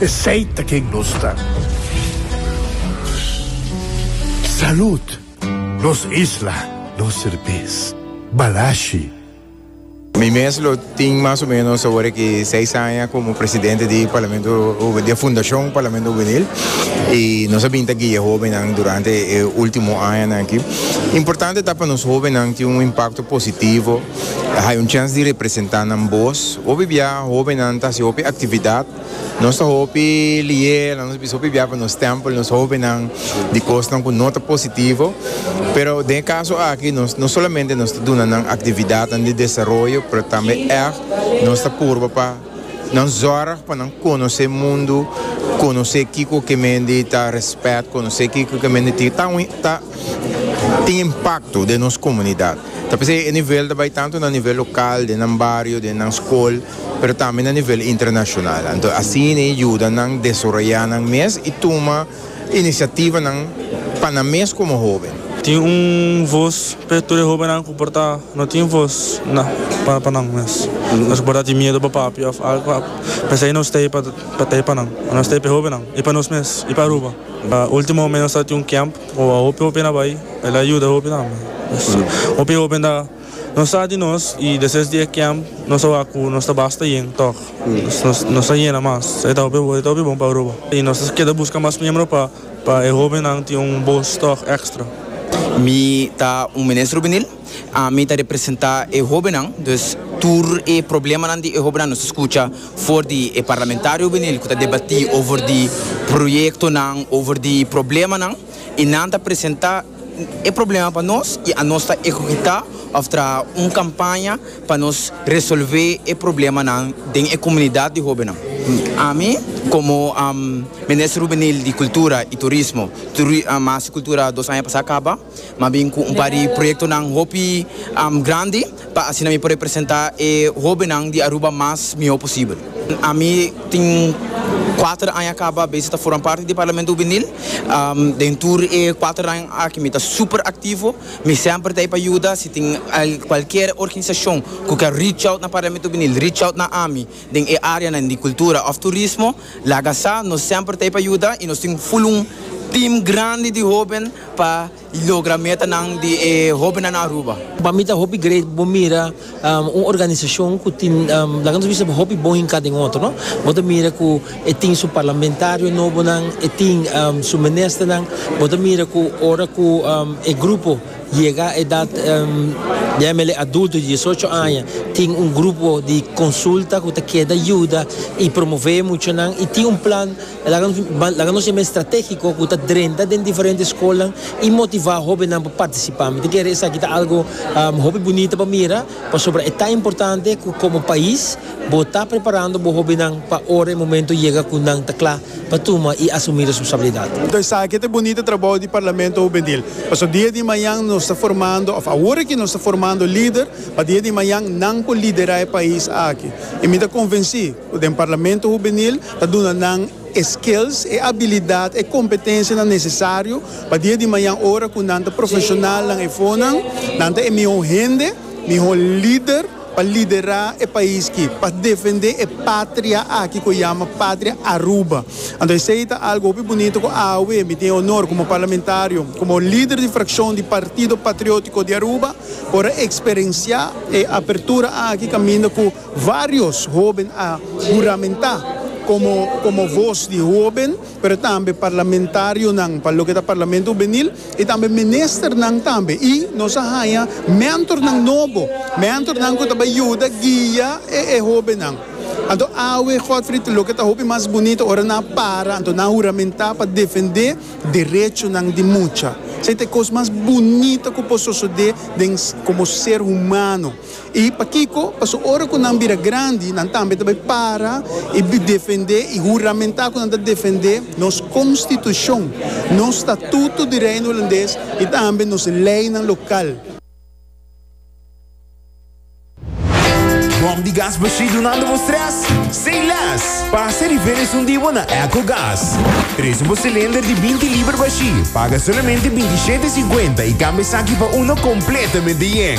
Esey ta ken nos ta. Salud! Nos isla, nos serbes. Balashi. Mi mes lo tin mas o menos awor ki seis aña como presidente di Parlamento Juvenil, di e fundacion Parlamento Juvenil, y nos a bin ta guia hobennan durante e ultimo añanan aki. Importante ta pa nos hobennan tin un impacto positivo. Hay un chance di representa nan bos. Hopi bia hobennan ta haci hopi actividad. Nos ta hopi leer, nos ta bisa hopi bia pa nos stempel nos hobennan di cosnan cu no ta positivo. Pero den e caso aki nos no solamente nos ta duna nan actividadnan di desaroyo pero tambe ect nos ta purba pa. Nan zorg pa nan conoce mundo, conoce kico ke mende ta respect, conoce kico ke mende tin, ta un, ta tin impacto den nos comunidad. Ta p'esei e nivel ta bay tanto na nivel local, den nan bario, den nan scol, pero tambe na nivel internacional. Anto asina e yuda nan desoroya nan mes y tuma. inisiativanan pa nan mes komo hóben. Tin un vos p'e tur e hóbennan ku por ta no tin vos na pa nan mes. Nos ku por ta tin miedu pa papia òf algu a pensa i no stay pa ta e pa nan. A no stay p'e hóbennan, i pa nos mes, i pa Aruba. Último momen nos ta tin un kèmp ku a hopi hopi na bai, el a yuda hopi tambe. Hopi hóben ta. Nos sa di nos i despues di e camp nos a wak cu nos ta basta yen tog. Nos ta yena mas. E ta hopi bo, e ta hopi bon pa Aruba. I nos ta keda busca mas miembro pa pa e hobennan tin un bos tog extra. Mi ta un minister hubenil. Ami ta representa e hobennan. Dus tur e problemanan di e hobennan nos ta scucha for di e parlamentario hubenil cu ta debati over di proyectonan, over di problemanan i nan ta presenta. e problema pa nos y anos ta ehecuta of traha un campaña pa nos resolve e problemanan den e comunidad di hobennan. Ami como Minister Juvenil di Cultura y Turismo, mas cultura dos aña pasa caba, m'ha bin cu un par di proyectonan hopi grandi. pa asina mi por representa e hobennan di Aruba mas miho posibel. Ami tin kuater aña kaba bes ta forma parti di Parlamento Hubenil. Den tur e kuater aña aki mi ta super aktivo, mi semper ta ei pa yuda. Si tin kualkier organisashon ku ke reach out na Parlamento Hubenil, reach out na ami den e áreanan di kultura òf turismo, laga sa. Nos semper ta ei pa yuda i nos tin un fulun tim grandi di hoben pa. logra metanan di e hobennan Aruba. Pa mi ta hopi great bo mira un organisacion cu tin laga nos bisa hopi bon hinca den otro no bo ta mira cu e tin su parlamentario nobonan e tin su ministernan bo ta mira cu ora cu e grupo yega edad yamele adulto di diesocho aña tin un grupo di consulta cu ta keda yuda y promove e muchanan y tin un plan E laga nos ban laga nos e mes strategiko ku ta drenta den diferente skolnan i motivá hóbennan pa partisipá. Mi ta kere esaki ta algu hopi bunita pa mira pasobra e ta importante ku komo pais bo ta preparando bo hóbennan pa ora e momentu yega ku nan ta kla pa tuma i asumí responsabilidat. Enton esaki ta e bunita trabou di Parlamento Hubenil pasobra dia di mañan nos ta formando òf awor aki nos ta formando lider pa dia di mañan nan por liderá e pais aki i mi ta konvensí Den Parlamento Hubenil ta duna nan e skills, e abilidat, e kompetensianan nesesario pa dia di mañan ora ku nan ta profeshonal nan efonan, nan ta e mihó hende, mihó lider pa liderá e pais ki, pa defendé e patria aki ku e yama Patria Aruba. Anto esei ta algu hopi bunito ku awe mi tin e onor komo parlamentario, komo lider di frakshon di Partido Patriótiko di Aruba por a eksperensiá e apertura aki kaminda ku Varios hoben a huramentá komo komo vos di hoben, pero tambe parlamentarionan pa loke ta Parlamento Hubenil i tambe ministernan tambe. I nos a haña mentornan nobo, mentornan ku ta bai yuda guia e e hobennan. Anto awe, Godfrid, loke ta hopi mas bunito ora nan a para, anto nan a huramentá pa defendé derechonan di mucha. Esei ta e kos mas bunito ku por sosodé den komo ser humano. I pakiko? Paso ora ku nan bira grandi, nan tambe ta bai para i defendé i huramentá ku nan ta defendé nos konstitushon, nos statuto di Reino Hulandes i tambe nos leinan lokal. Bòm di gas bashí dunando bo strès? Sei lès! Pasa di feria esun di bo na Echo Gas. Trese bo silinder di binti liber bashí, paga solamente binti shete e sinkuenta i kambia esaki pa uno kompletamente yen.